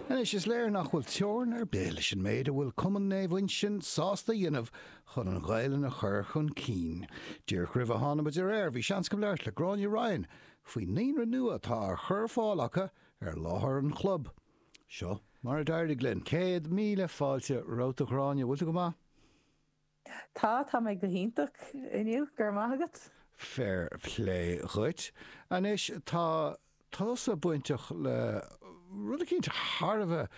Anois, is léir nach bhfuil teorann ar bith leis an méid a bhfuil Cumann Naomh Uinseann sásta a dhéanamh chun an Ghaelainn a chur chun cinn. Díreach roimh a tháinig muid ar aer, bhí seans agam labhairt le Gráinne Ryan faoin naíonra nua atá á chur ar fáil acu ar láthair an chlub. Seo mar a d'éirigh linn. Céad míle fáilte romhat a Ghráinne, bhfuil tú go maith? Tá, tá mé go hiontach inniu, go raibh maith agat. Fair plé dhuit. Anois, tá tusa bainteach le rud eicínt thar a bheith,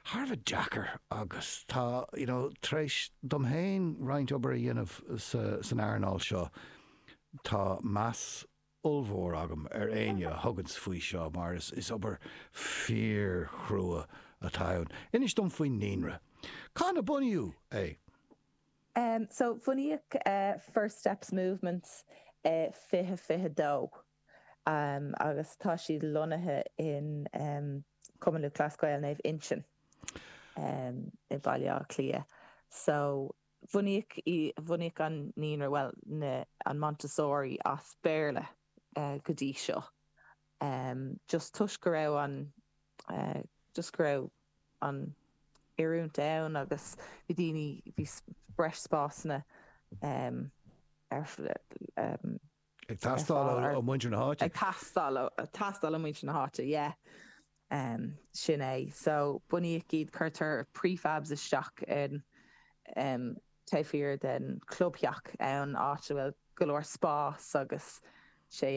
thar a bheith deacair agus tá, you know, tar éis dom féin roinnt obair a dhéanamh sa, san earnáil seo, tá meas, ollmhór agam ar éinne a thuganns faoi seo mar is, is obair fíorchrua atá ann. Inis dom faoin naíonra. Cathain a bunaíodh é? So, bunaíodh First Steps Movement i 2022 agus tá siad lonnaithe in Cumann Lúthchleas Gael Naomh Uinseann i mBaile Átha Cliath. So. Bunaíodh í, bunaíodh an naíonra, bhuel, na, an Montessori as Béarla go dtí seo, just toisc go raibh an, just go raibh an oiriúint ann agus bhí daoine, bhí breis spásanna ar, Ag teastáil ó muintir na háite. Ag teastáil ó, teastáil ó muintir na háite, yeah. Sin é. So, bunaíodh iad, cuirtear prefabs isteach in taobh thiar den chlubtheach ann, áit a bhfuil go leor spás agus tá sé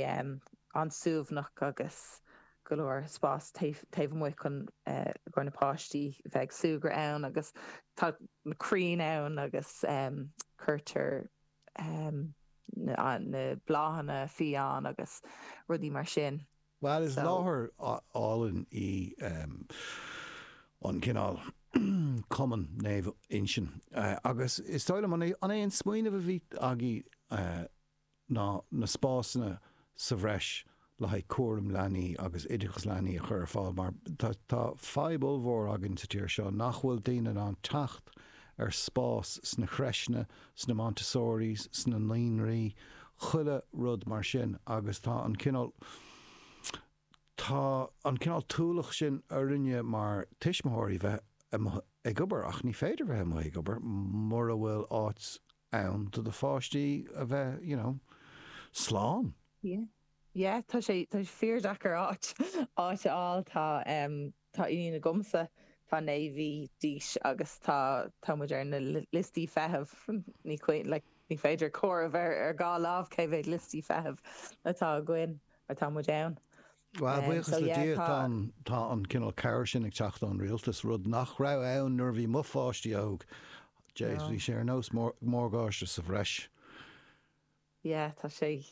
an-suaimhneach agus go leor spás taobh amuigh chun go na páistí bheith ag súgradh ann agus tá na crainn ann agus cuirtear na bláthanna fiáin agus rudaí mar sin. Bhuel, is láthair álainn í an cineál Cumann Naomh Uinseann agus is dóigh liom, an é an smaoineamh a bhí agaibh ná na spásanna sa bhreis le haghaidh cúram leanaí agus oideachas leanaí a chur ar fáil mar tá fadhb ollmhór againn sa tír seo nach bhfuil daoine in ann teacht ar spás sna creiseanna, sna Montessoris, sna naíonraí, chuile rud mar sin agus tá an cineál tá an cineál t-ualach sin orainne mar tuismitheoirí bheith amuigh ag obair ach ní féidir bheith amuigh ag obair mura bhfuil áit ann do do pháistí a bheith you know slán. Yeah yeah tá sé tá sé fíordheacair áit áit a fháil tá em tá iníon agamsa tá naoi mhí d'aois agus tá tá muid ar na liostaí feithimh ní chuí like ní féidir comhaireamh ar ar dhá lámh cé mhéad liostaí feithimh atá againn atá muid ann. Bhuel, buíochas le Dia, tá an cineál cabhair sin ag teacht ón rialtas, rud nach raibh ann nuair a bhí mo pháistí óg. Jeez, bhí sé ar nós morgáiste sa bhreis. Yeah, tá sé,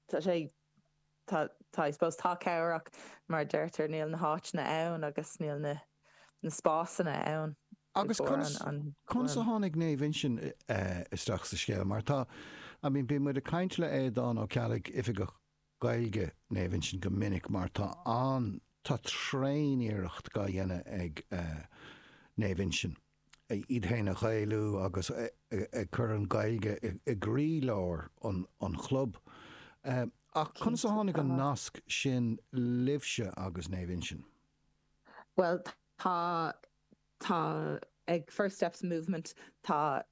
tá sé, tá, tá, I suppose, tá cabhair ann ach mar a deirtear, níl na háiteanna ann agus níl na, na spásanna ann. Agus conas, conas a tháinig Naomh Uinseann isteach sa scéal? Mar tá, I mean, bíonn muid ag caint le Aodán Ó Ceallaigh, Oifigeach Gaeilge, Naomh Uinseann go minic mar tá an, tá tréan-iarracht dhá dhéanamh ag Naomh Uinseann iad féin a Ghaelú agus ag cur an Ghaeilge i gcroí-lár an chlub. Ach conas a tháinig an nasc sin libhse agus Naomh Uinseann? Bhuel, tá. Tá ag First Steps Movement tá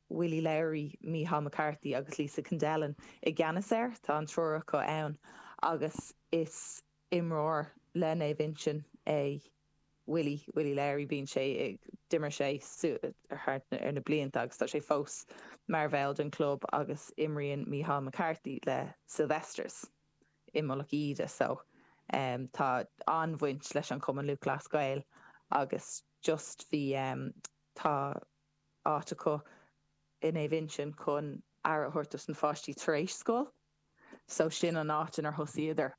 Willie Lowry, Micheál McCarthy agus Lisa Kendellen i gceannas air. Tá an triúr acu ann agus is imreoir le Naomh Uinsionn é Willie, Willie Lowry. Bíonn sé ag, d'imir sé thar na blianta agus tá sé fós mar bhall den club agus imríonn Micheál McCarthy le Sylvesters. i Mullach Íde so em tá an-bhaint leis an Chumann Lúthchleas Gael agus just bhí em tá áit acu i Naomh Uinseann chun aire a thabhairt dos na pháistí tar éis scoil so sin an áit inar thosaíodar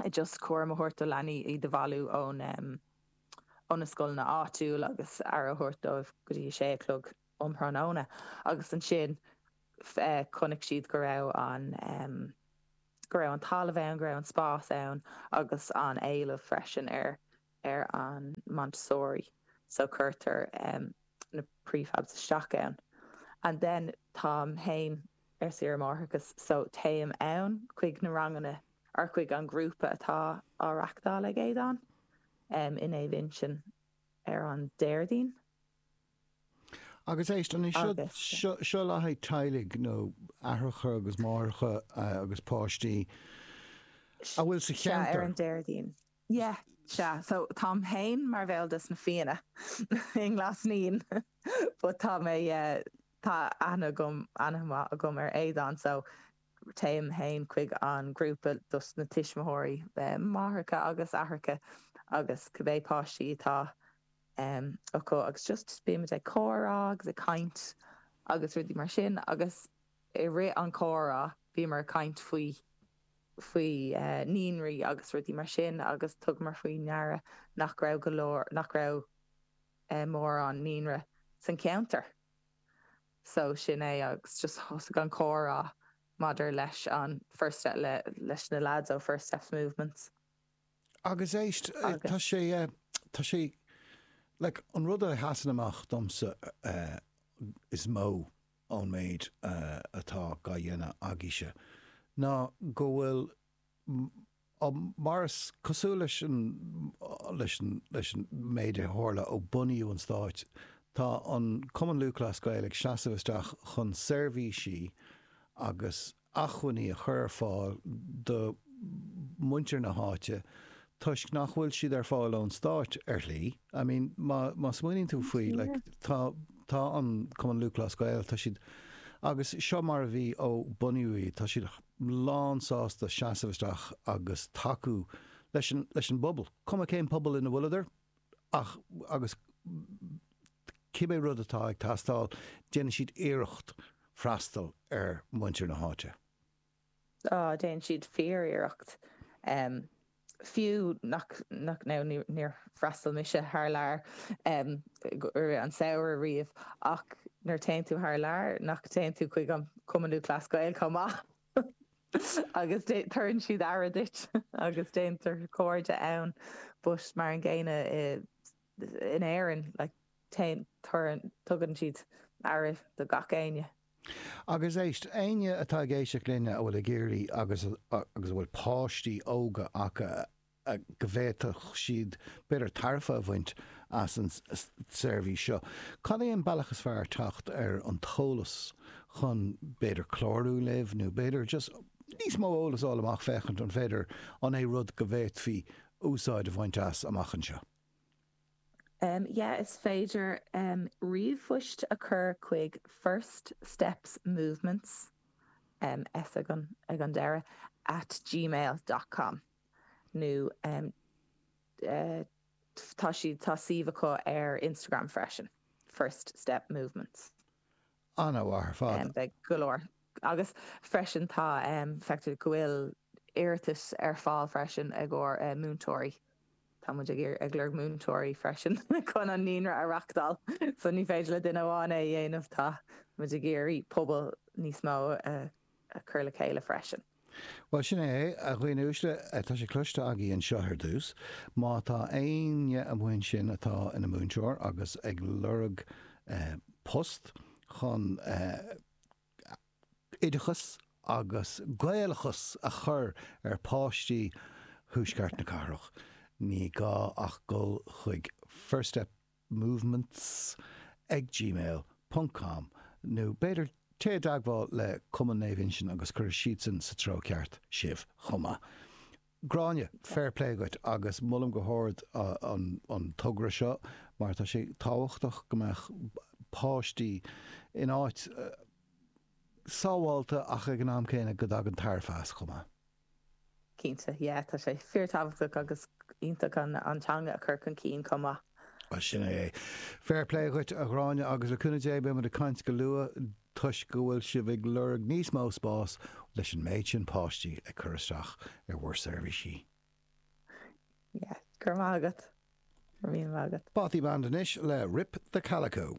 em just cúram a thabhairt do leanaí, iad a bhailiú ón em ó na scoileanna áitiúil agus aire a thabhairt dóibh go dtí a sé a chlog. um thráthnóna agus ansin chonaic siad go raibh an, go raibh an talamh ann, go raibh an spás ann agus an éileamh freisin ar, ar an Montessori so cuirtear na prefabs isteach ann and then táim féin ar saoire máithreachais so téim ann chuig na ranganna or chuig an ghrúpa atá á reachtáil ag Aodán i Naomh Uinseann ar an Déardaoin Agus éist anois, seo le haghaidh teaghlaigh, nó aithreacha agus máithreacha agus páistí, bhfuil sé ar an Déardaoin. Sea, ar an Déardaoin. Yeah, sea, so táim féin mar bhall dos na Fianna i nGlas Naíon but tá mé, tá aithne agam, aithne mhaith agam ar Aodán so téim féin chuig an ghrúpa dos na tuismitheoirí, máithreacha agus aithreacha agus cibé páistí atá. em, acu agus just bímid ag comhrá agus ag caint agus rudaí mar sin agus i rith an chomhrá bhíomar ag caint faoi, faoi eh naíonraí agus rudaí mar sin agus thugamar faoi deara nach raibh go leor, nach raibh eh mórán naíonra san cheantar. So sin é agus just thosaigh an comhrá maidir leis an First Step le, leis na lads ó First Steps Movements. Agus éist, tá sé, tá sé, like, an rud a sheasann amach domsa is mó ón méid atá á dhéanamh agaibhse ná go bhfuil, mar is cosúil leis an, leis an, leis an méid a tharla ó bunaíodh an Stáit, tá an Cumann Lúthchleas Gael ag seasamh isteach chun seirbhísí agus, acmhainní a chur ar fáil do mhuintir na háite toisc nach bhfuil siad ar fáil ón stáit ar shlí. I mean má smaoiníonn tú faoi like tá tá an Cumann Lúthchleas Gael tá siad agus seo mar a bhí ó bunaíodh iad tá siad lán sásta seasamh isteach agus tacú leis an leis an bpobal cuma cén pobal ina bhfuileadar. ach agus cibé rud atá ag teastáil, déanann siad iarracht freastal ar mhuintir na háite. Á, déanann siad fíor-iarracht. Fiú nach, nach, nó níor freastail mise thar lear i rith an samhradh riamh, ach nuair a téann tú thar lear, nach téann tú chuig an Cumann Lúthchleas Gael chomh maith? agus tabharann siad aire duit agus déantar cairde ann but mar an gcéanna in Éirinn like tugann siad aire do gach éinne. Agus éist, éinne atá ag éisteacht linn a bhfuil ag iarraidh agus agus a bhfuil páistí óga acu a go bhféadfadh siad b'fhéidir tairbhe a bhaint as an tseirbhís seo. Cad é an bealach is fearr teacht ar an t-eolas chun b'fhéidir clárú libh nó b'fhéidir just níos mó eolas a fháil amach féachaint an féidir an é rud go bhféadfaí úsáid a bhaint as amach anseo? Yeah is féidir ríomhphost a chur chuig First Steps Movements, S ag an deireadh, at gmail dot com. nó tá siad tá suíomh acu ar Instagram freisin First Step Movements. An-mhaith ar fad. Beidh go leor agus freisin tá feictear go bhfuil iarratais ar fáil freisin ag ár múinteoirí. Tá muid ag ag lorg múinteoirí freisin chun an naíonra a reachtáil. So ní féidir le duine amháin é a dhéanamh tá muid ag iarraidh pobal níos mó a a cur le chéile freisin. Bhuel, sin é, a dhaoine uaisle, tá sé cloiste agaí anseo ar dtús, má tá éinne amuigh ansin atá ina múinteoir agus ag lorg post chun oideachas agus Gaelachas a chur ar pháistí thuaisceart na cathrach, ní gá ach dul chuig First Step movements ag gmail ponc com nó b'fhéidir téigh i dteagmháil le Cumann Naomh Uinseann agus cuirfidh siadsan sa treo ceart sibh chomh maith. Gráinne, fair play dhuit agus molaim go hard an togra seo mar tá sé tábhachtach go mbeadh páistí in áit sábháilte ach ag an am céanna go dtagann tairbhe as chomh maith. Cinnte, yeah, tá sé fíor-tábhachtach agus iontach an teanga a chur chun cinn chomh maith. Bhuel, sin é é. Fair play dhuit, a Ghráinne, agus le cúnamh Dé beimid ag caint go luath toisc go bhfuil sibh ag lorg níos mó spás leis an méid sin páistí ag cur isteach ar bhur seirbhísí. Yeah, go raibh maith agat. Go raibh míle maith agat. Bothy Band anois le Rip The Calico.